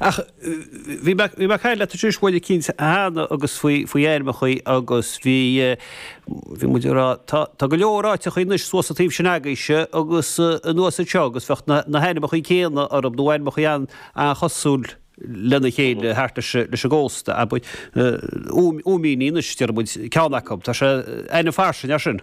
Ach bhí mé bhí mé ag caint leat thíos i mbaile eicínt cheana agus faoi faoi ainmneacha agus bhí bhí muid ag rá tá tá go leor áiteacha anois suas sa taobh sin agaibhse agus anuas anseo agus bheadh na na hainmneacha céanna orthu nó ainmneacha an an-chosúil lena chéile thart leis an leis an gcósta abair Ó Ó Míní anois deir muid ceann acu tá sé ainm fairsing as sin.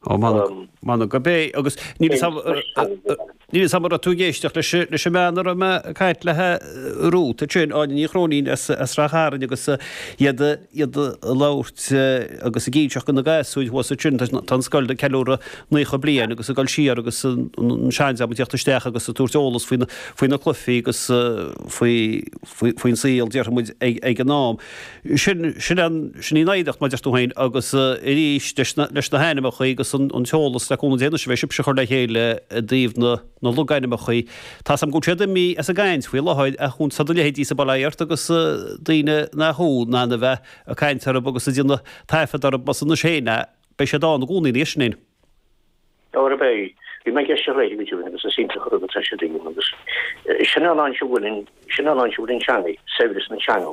Ó, m'anam, m'anam gurb ea, agus níl fhios agam, níl fhios agam an raibh tú ag éisteacht leis, leis an mbean a raibh mé ag caint léi, thuas ansin, Áine Ní Chróinín as, as Rath Chairn agus iad, iad a' labhairt agus ag inseacht go na gasúir thuas ansin, tá, tá an scoil ag ceiliúradh naocha bliain agus ag goil siar agus an, an seandream ag tíocht isteach agus ag tabhairt eolas faoi na, faoi na cluichí agus faoi, faoi, faoin saol déarfaimid ag, ag an am. Sin, sin an, sin í an oidhreacht, mar a deir tú féin, agus arís, leis na, leis na hainmneacha agus an, an t-eolas le cúnamh Dé anois a bheidh sibhse ag cur le chéile i dtaobh na, na logainmneacha, tá's agam go bhfuil siad imí as an gcaint faoi láthair ach chun, tá do leithéidí-sa, bail ó Dhia ort agus daoine nach thú, na, na, bheith ag caint orthu agus ag déanamh taifead orthu, mar sin féin a, beidh siad ann i gcónaí ina dhiaidh sin féin. Óra a beidh. Bhí mé ag ceist ar Dháithí go dtí agus is iontach an rud atá sé ag déanamh agus sin an áit a bhfuil an, sin an áit a bhfuil an teanga, saibhreas na teanga.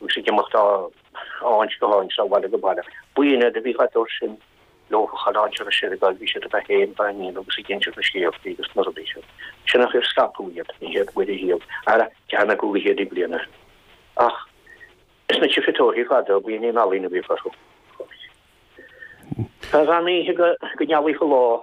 Thug siad imeacht den Fhrainc go hAlbain seo ó bhaile go baile. Buíon eile a bhí thart dóibh sin, leofa chaillte ar a seireadáil, bhí siad ag fíochán báinín agus ag insint na scéalta agus na rudaí sin. Sin an chuid ar scaipeadh iad, an chéad Mhuire Dhíobh, ara, ceann acu go céad bliain. Ach is na tchifeatóirí fada a bhí in ealaín a bhíodh orthu. San oíche go ngealaíodh an lá.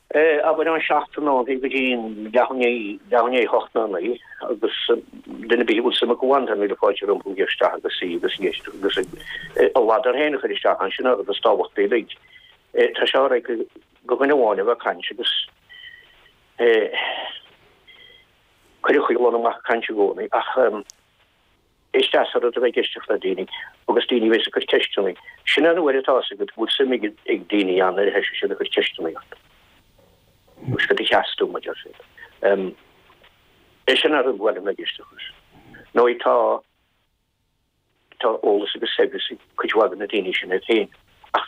Abair ón seacht a chlog go dtí leath i ndiaidh a hocht nó a naoi agus duine ar bith a bhfuil suim aige ann, tá míle fáilte rompu a ghabháil isteach agus suí agus éisteacht agus a ladar féin a chur isteach ann sin an rud is tábhachtaí uilig. Tá sé alright do dhuine amháin a bheith ag caint agus é cuireadh chuig duine amháin ag caint i gcónaí ach, Is deas an rud a bheith ag éisteacht le daoine agus daoine a bheas ag cur ceisteanna. Sin an uair atá 's agat go bhfuil suim ag daoine ann nuair a thoisíonn siad ag cur ceisteanna ort. Agus cad a mheas tú, a deir siad. Em, eh sin an rud ar mhaith liom a bheith ag éisteacht leis. Ndóigh tá, tá eolas agus saibhreas ag cuid mhaith de na daoine sin iad féin ach.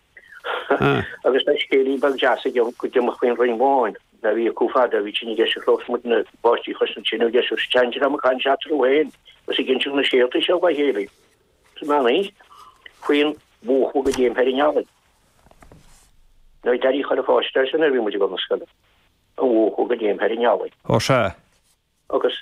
Agus tá scéal beag deas agam go d'iomdh faoin Roinn Bháin. Nó bhí, i bhfad, bhí tine deas agus muidne, páistí chois na tine deise agus bhíodh siadsan ag caint eatarthu féin agus ag insint na scéalta seo dá chéile. Is maith mé fán bhuachailleacht go dtéimis thar an eallach. Nó ag Daidí ag cur faire sular bhí muid ag gabháil na scoile. An bhuachailleacht go dtéimis thar an eallach. Ó sea. Agus